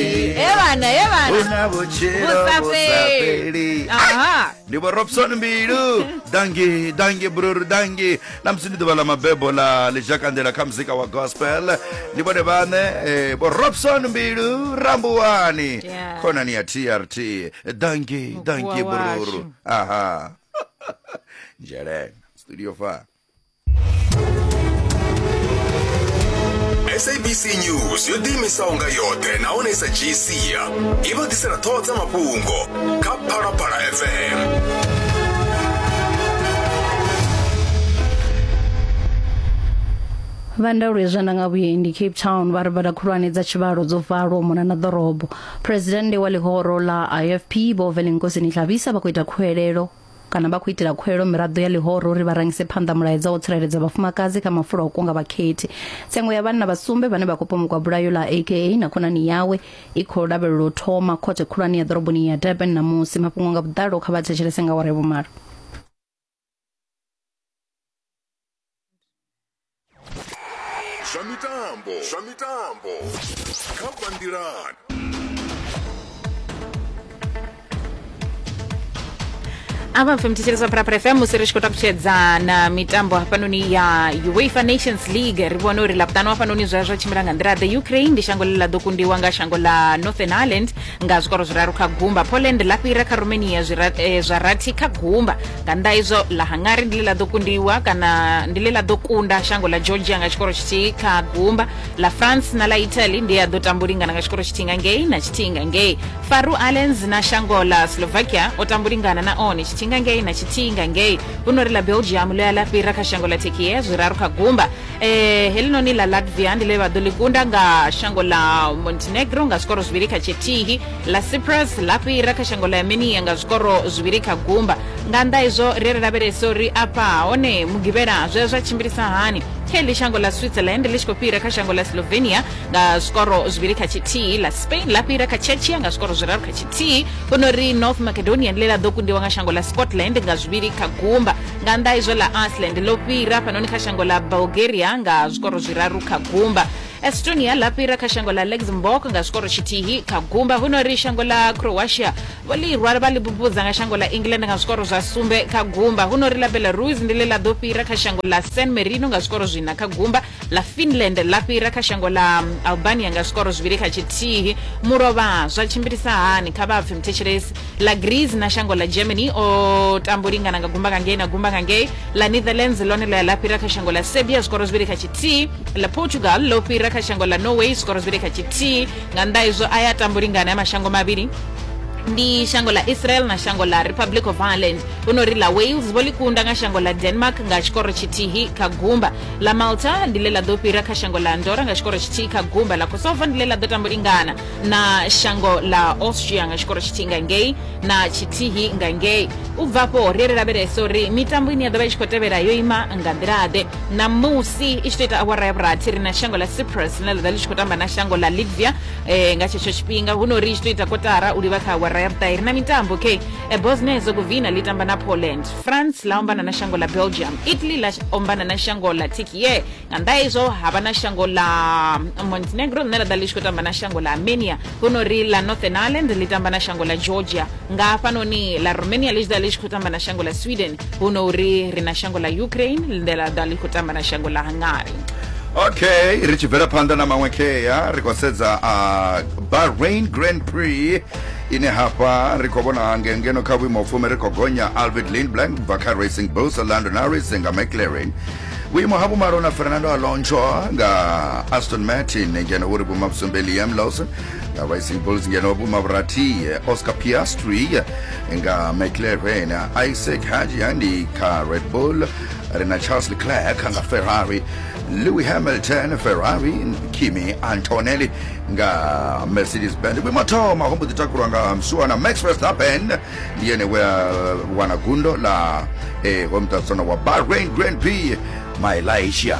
evana evana una vhutshilo vhusafheli aha ndi vho robson mbilu dangi dangi bruru dangi na musi ndi ḓuvha ḽa mabebo ḽa ḽizhakandela kha muzika wa gospel ndi vhone vhaṋe eh, vho robson mbilu rambuwani Yeah. khonani ya trt dangi dangi Mukhuwa bruru washu. aha njelena studio fa sabc news yo ḓiimisaho nga yoṱhe nahone sa gc i vha ḓisela ṱhoho dza mafhungo kha phalaphala fm vha ndaulo ya zwanḓa nga vhuendi cape town vha ri bada khulwane dza tshivhalo dzo valwa u mona na ḓorobo phuresidennde wa ḽihoro ḽa ifp vho velenkosi nitlabisa vha khou ita khuwelelo kana vha khou itela khuelo miraḓo ya ḽihoro uri vha rangise phanḓa mulaedza wa u tsireledza vhafumakadzi kha mafulo a u kunga vhakhethi. Tsengo ya vhanna vha sumbe vhane vha khou pomokwa bulayo ḽa AKA na khonani yawe i khou lavhelelwa u thoma khothe khulwane ya ḓoroboni ya Durban ṋamusi. Mafhungo nga vhuḓalo kha vha thetshelese nga awara ya vhumalo. zwa mitambo zwa mitambo kha bandilan apa mfe mthetshelesa pharapara fm musi ri tshi khou takutshedza na mitambo hafhanoni ya uefa nations league ri vhone uri labuṱanu hafhanoni zwa zwa tshimbila nga nḓila the ukraine ndi shango ḽe ḽa ḓo kundiwa nga shango ḽa northern ireland nga zwikoro zwiraru kha gumba poland ḽa fhira kha romania zwira- eh, zwa rathi kha gumba nga nnḓa izwo ḽa hungary ndi ḽe ḽa ḓo kundiwa kana ndi ḽe ḽa ḓo kunda shango ḽa georgia nga tshikoro tshithihi kha gumba ḽa france na ḽa italy ndi a ḓo tambulingana nga tshikoro tshithihi nga ngei na tshithihi nga ngei faru allens na shango ḽa slovakia o tambulingana na one tshithihi nga ngei na tshithihi nga ngei hu no ri ḽa belgium ḽo ya ḽa fhira kha shango ḽa tekie zwiraru kha gumba um eh, helinoni ḽa latvia ndi ḽe vha ḓo ḽi kunda nga shango ḽa montenegro nga zwikoro zwivhili kha tshithihi la cyprus la fhira kha shango ḽa yamenia nga zwikoro zwivhili kha gumba nga nnḓa izwo ri ri lavhelesa uri afha hone mugivhela zwe zwa tshimbilisa hani kha iḽi shango ḽa switzerland ḽi tshi khou fhira kha shango ḽa slovenia nga zwikoro zwivhili kha tshithihi la spain ḽa fhira kha chechia nga zwikoro zwiraru kha tshithihi huno ri north macedonian ḽe ḽa ḓo kundiwa nga shango ḽa scotland nga zwivhili kha gumba nga nnḓa izwo ḽa iceland ḽo fhira fhanoni kha shango ḽa bulgaria nga zwikoro zwiraru kha gumba estonia ḽa fhira kha shango ḽa luxembourg nga zwikoro tshithihi kha gumba huno ri shango ḽa croatia vho ḽi rwa vha ḽi bubudza nga shango ḽa england nga zwikoro zwa sumbe kha gumba huno ri ḽa belarus ndi ḽe ḽa ḓo fhira kha shango ḽa san marino nga zwikoro zwina kha gumba ḽa finland ḽa fhira kha shango ḽa albania nga zwikoro zwivhili kha tshithihi mulovha zwa tshimbilisa hani kha vha pfe muthetshelesi ḽa greece na shango ḽa germany o tambo lingana nga gumba nga ngei na gumba nga ngei ḽa netherlands ḽone ḽo ya ḽa fhira kha shango ḽa serbia zwikoro zwivhili kha tshithihi ḽa portugal ḽo fhira kha shango ḽa norway zwikoro zwivhili kha tshithihi nga nnḓa izwo a ya tambo lingana ya mashango mavhili ndi shango ḽa israel na shango ḽa republic of ireland hu no ri ḽa wales vho ḽi kunda nga shango ḽa denmark nga tshikoro tshithihi kha gumba ḽa malta ndi ḽe ḽa ḓo fhira kha shango ḽa andora nga tshikoro tshithihi kha gumba ḽa kosovo ndi ḽe ḽa ḓo tambo lingana na shango ḽa austria nga tshikoro tshithihi nga ngei na tshithihi nga ngei u bva afho ri ri lavhelesa uri mitambo ine ya ḓo vha i tshi khou tevhela yo ima nga nḓilaḓe ṋamusi i tshi tou ita awara ya vhurathi ri na shango ḽa cyprus ḽine ḽa ḓa ḽi tshi khou tamba na shango ḽa litvia eh, nga tshetsho tshifhinga hu no ri i tshi tou ita kotara u livha kha awara ya vhuṱahi ri na mitambo okay eh, bosnia hezegovina ḽi tamba na poland france ḽa ombana na shango ḽa belgium italy ḽa ombana na shango ḽa tikie nga nnḓa izwo ha vha na shango ḽa montenegro ḽine ḽa ḓa ḽi tshi khou tamba na shango ḽa armenia hu no ri ḽa northern ireland ḽi tamba na shango ḽa georgia nga hafhanoni ḽa romania ḽi tshi ḓa ḽi tshi khou tamba na shango ḽa sweden hu no uri ri na shango ḽa ukraine ḽine ḽa ḓa ḽi khou tamba na shango ḽa hungary okay ri tshi bvela phanḓa na maṅwe khea ri khou sedza a bahrain grand prix ine hafha ri khou vhona ngengeno kha vhuimo fumi ri khou gonya alvid lindblank bva kha racing bulls london harris nga mclaren vhuimo ha vhumalo na fernando alonso nga aston martin ngeno vhuri vhuma vhusumbe liam lawson nga racing bulls ngeno vhuma vhurathi oscar piastri nga mclaren isaac hajia ndi kha red bull ri na charles leclerc nga ferrari louis hamilton ferrari kimi antonelli nga mercedes band vhuimo thoma ho mbo ḓi takulwa nga msuwana max verstappen ndi yene we a wana gundo ḽa eh, hoyu muṱalusano wa bahrain grand prix malaysia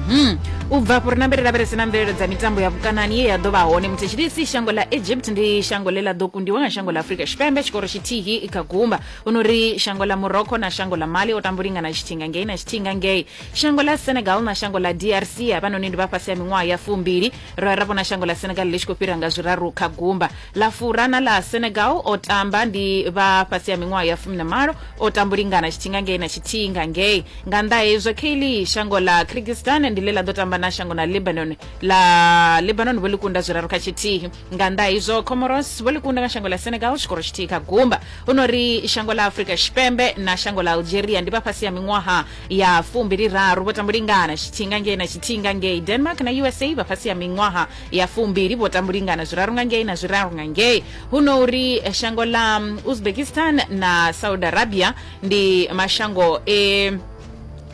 Mhm. u bva afho ri nambe ri lavhelese na mvelelo dza mitambo ya vhukanani ye ya ḓo vha hone muthetshidisi shango ḽa egypt ndi shango ḽe ḽa ḓo kundiwa nga shango ḽa afurika tshipembe tshikoro tshithihi kha gumba hu no ri shango ḽa morocco na shango ḽa mali o tambo lingana tshithinga ngei na tshithinga ngei shango ḽa senegal na shango ḽa drc havhanoni ndi vha fhasi ha miṅwaha ya fumbili ra ra vhona shango ḽa senegal ḽi tshi khou fhira nga zwiraru kha gumba Ḽa fura na ḽa Senegal o tamba ndi vha fhasi ha miṅwaha ya fumi na malo, o tamba u lingana tshithinga ngei na tshithinga ngei. Nga nnḓa ha hezwo, Kaylee, shango ḽa Kyrgyzstan ndi ḽe ḽa ḓo tamba na shango na Lebanon, ḽa Lebanon vho ḽi kunda zwiraru kha tshithihi. Nga nnḓa ha izwo, Comoros vho ḽi kunda nga shango ḽa Senegal tshikoro tshithihi kha gumba. Hu no ri shango ḽa Afrika Tshipembe na shango ḽa Algeria ndi vha fhasi ha miṅwaha ya fumbili raru, vho tamba u lingana tshithinga ngei na tshithinga ngei. Denmark na usa vha fhasi ha miṅwaha ya fumbili vho tambulingana zwiraru nga ngei na zwiraru nga ngei huno uri eh, shango la mm, uzbekistan na saudi arabia ndi mashango e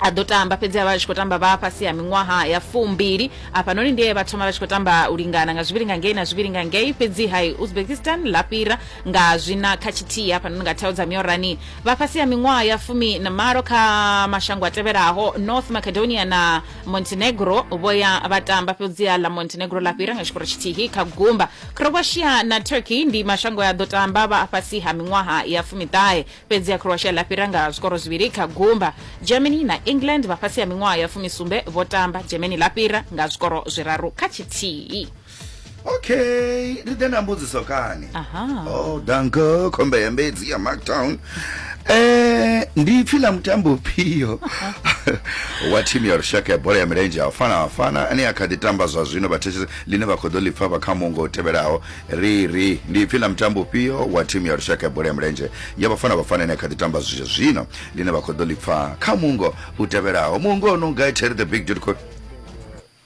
a ḓo tamba fhedzi a vha tshi khou tamba vha fhasi ha miṅwaha ya fumbili afhanoni ndiye vha thoma vha tshi khou tamba u lingana nga zwivhili nga ngei na zwivhili nga ngei fhedzi hai uzbekistan ḽa fhira nga zwina kha tshithihi hafhanoni nga thao dza miorani vha fhasi ha miṅwaha ya fumi na malo kha mashango a tevhelaho north macedonia na montenegro vho ya vha tamba fhedziha ḽa montenegro ḽa fhira nga tshikoro tshithihi kha gumba croatia na turkey ndi mashango a ḓo tamba vha a fhasi ha miṅwaha ya fumiṱahe fhedziha croatia ḽa fhira nga zwikoro zwivhili kha gumba germany na england vha fhasi ha miṅwaha ya fumisumbe vho tamba germany ḽa fhira nga zwikoro zwiraru kha tshithihi okay ri ḓe na mbudziso kani aha oh danke khombe ya mbedzi ya marktown Eh, ndi pfi ḽa mutambo ufhio wa thimu ya lushaka ya bola ya milenzhe ya vafana vafana ane a kha ḓi tamba zwa zwino vhathetshe ḽine vha khou ḓo ḽi pfa vha kha mungo u tevhelaho ri ri ndi pfi ḽa mutambo ufhio wa thimu ya lushaka ya bola ya milenzhe ya vafana vafana ane a kha ḓi tamba zwi zwino ḽine vha khou ḓo ḽi pfa kha mungo u tevhelaho mungo o no nga terry the big dude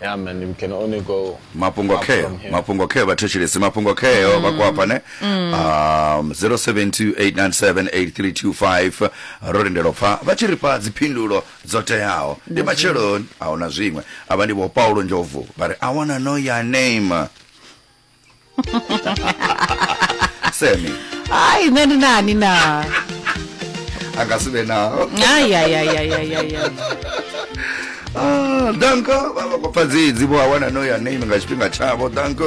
Yeah, man, we can only go mafhungo up kheo from here. mafhungo kheo vhathetshelesi mafhungo kheo vha khou afha ne um 0728978325 ro lindela u pfa vha tshi ri fha dziphindulo dzo teaho ndi matsheloni a huna zwiṅwe avha ndi vho paulo ndlovu vha ri i wanna know your name semi hayi nṋe ndi nani na a nga si vhe nao ayayayayayaya Ah, danko vha vha khou pfa dzedzi vho a wana no ya name nga tshifhinga tshavho danko